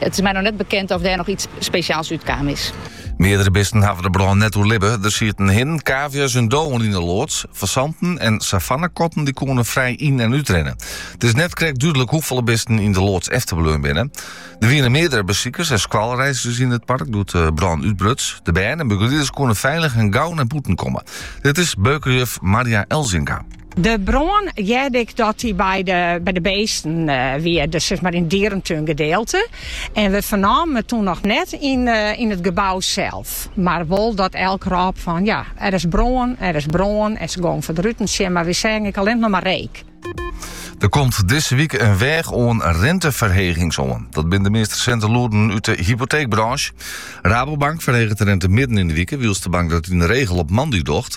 It is my noch net bekend of dêr noch iets speciaals út kaam is. Meardere bisten hawwe de brân net oerlibbe. Der sieten hinnen, kavia's en dowen yn 'e loads. Fasanten en savannekatten dy koene frij yn- en útrinne. It is net krekt dúdlik hoefolle bisten yn de loads efterbleaun binne. Der wiene meardere besikers en skoalreiskes yn it park doe't de brân útbruts. De bern en begelieders koene feilich en gau nei bûten komme. Dit is beukeljuf Marja Elzinga. De brân hearde ik dat dy by de beesten wie, dus sis mar yn dierentún gedeelte. En we fernamen it toen noch net yn it gebou sels, mar wol dat elk rôp fan ja, der is brân, der is brân en se gongen foar de ruten sjen, mar we seagen ek allinnich noch mar reek. Der komt dizze wike in weach oan rinteferhegings oan. Dat binnen de meast resinte lûden út de hypoteekbrânsje. Rabobank ferheget de rinte midden yn de wike, wylst de bank dat yn de regel op moandei docht.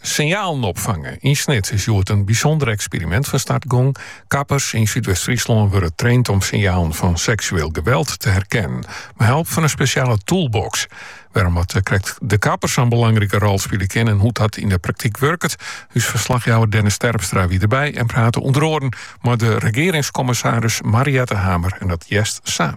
Sinjalen opfange. Yn Snits is hjoed in bysûnder eksperimint fan start gongen. Kappers yn Súdwest-Fryslân wurde traind om sinjalen fan seksueel geweld te herkennen mei help fan in spesjale toolbox. Wêrom't krekt de kapper sa'n belangrike rol spile kin en hoe't dat yn de praktyk wurket, ús ferslachjouwer Dennis Terpstra wie derby en prate ûnder oaren mei de regearingskommissaris Mariëtte Hamer en dat hearst sa.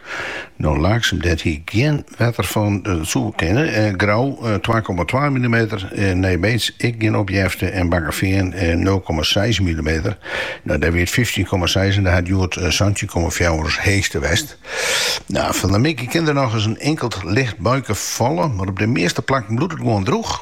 No Laaksum, dêr hie ik gjin wetter fan. Dat soe kinne. Grou, twa komma twa millimeter. Nij Beets, ek gjin opjefte. En Bakkefean, nul komma seis millimeter. No, dêr wie it fyftjin komma seis en dêr hat it hjoed santjin komma fjouwer as heechste west. No, fan de middei kin der nochris in inkeld licht buike falle, mar op de measte plakken bliuwt it gewoan drûch.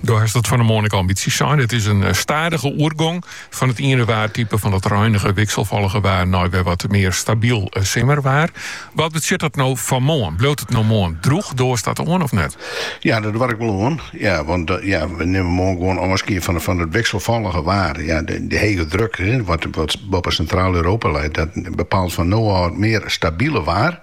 Do hast it fan 'e moarn ek al in bytsje sein. It is in eh, stadige oergong fan it iene waartype fan dat reinige, wikselfollige waar nei wer wat mear stabyl eh, simmerwaar. Wat betsjut dat no foar moarn? Bliuwt it no moarn drûch? Doarst dat oan of net? Ja, dat doar ik wol oan. Ja, want eh, ja, we nimmen moarn gewoon ôfskie fan, van het wikselvallige waar. Ja, de, de hege druk, wat, wat boppen Sintraal-Europa leit, dat bepaalt van nou al meer stabiele waar.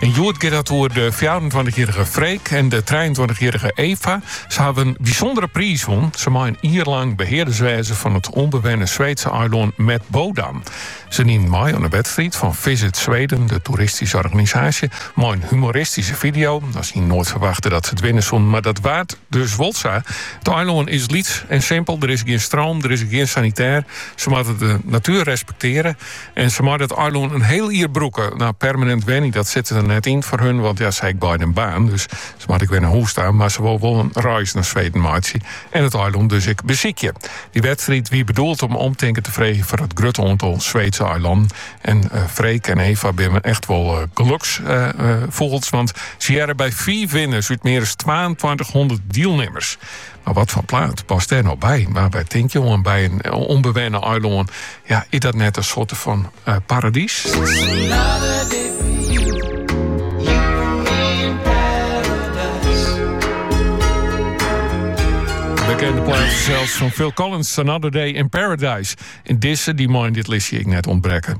En hjoed giet dat oer de 24-jarrige Freek en de 23-jarrige Eva. Se hawwe in bysûndere priis wûn. Se meie in jier lang behearders wêze fan it ûnbewenne Sweedse eilân Medbådan. Se diene mei oan de wedstriid fan Visit Sweden, de toeristyske organisaasje, mei in humoristyske video. Se hiene noait ferwachte dat se it winne soene, mar dat waard dus wol sa. It eilân is lyts en simpel, der is gjin stroom, der is gjin sanitêr. Se moatte de natuer respektearje. En se meie it eilân in hiel jier brûke. Nou, permanint wenje, dat sit der net yn foar hun, want ja, se ha beide in baan, dus se moatte ek wer nei hûs ta, mar se wolle wol in reis nei Sweden meitsje en it eilân dus ek besykje. Dy wedstriid wie bedoeld om omtinken te freegjen foar it grutte oantal Sweedse eilannen. En eh, Freek en Eva binnen echt wol eh, geloksfûgels, eh, want se hearre by fiif winners út mear as 2200 dielnimmers. Mar wat foar plaat past dêr no by? Want wy tinke oan by in ûnbewenne eilân. Ja, is dat net in soarte fan uh, paradys? bekende plaat zelfs van Phil Collins, Another Day in Paradise. En dizze, dy mei yn dit listje ek net ûntbrekke.